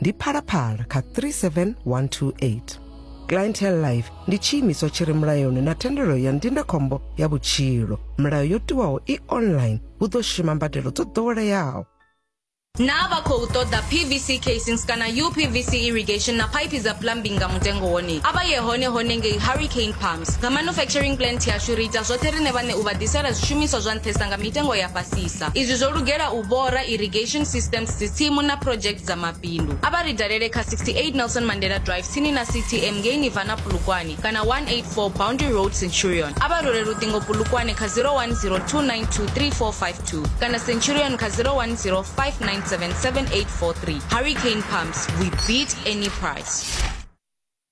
ndi phalaphala kha 37128 clientele life ndi tshiimiswa tshi re mulayoni na thendelo ya ndindakhombo ya vhutshilo milayo yo tiwaho i online hu ḓo shuma mbadelo dzo ḓoweleaho naa vha khou ṱoḓa pvc casings kana upvc irrigation na phaiphi dza plumbing nga mutengo wone a vha ye hone hone ngei hurricane pumps nga manufacturing plant yashu ri ita zwoṱhe riṋe vhaṋe u vha ḓisela zwishumiswa zwa nṱhesa nga mitengo ya fhasisa sa. Izwi zwo lugela u vhora irrigation systems dzitsimu na project dza mabindu. A vha ri dalele kha 68 Nelson Mandela Drive tsini na CTM ngei Nirvana Polokwane kana 184 Boundary Road Centurion. A vha rwele luṱingo Polokwane kha 0102923452 kana Centurion kha 0105977843. Hurricane Pumps, we beat any price.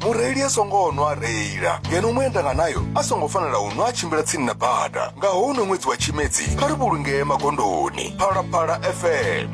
mureili a songo nwa a reila ngeno muendanga nayo a songo fanela u nwa a tshimbila tsini na bada nga houno ṅwedzi wa tshimedzi kha ri vhulungee magondoni phalaphala fm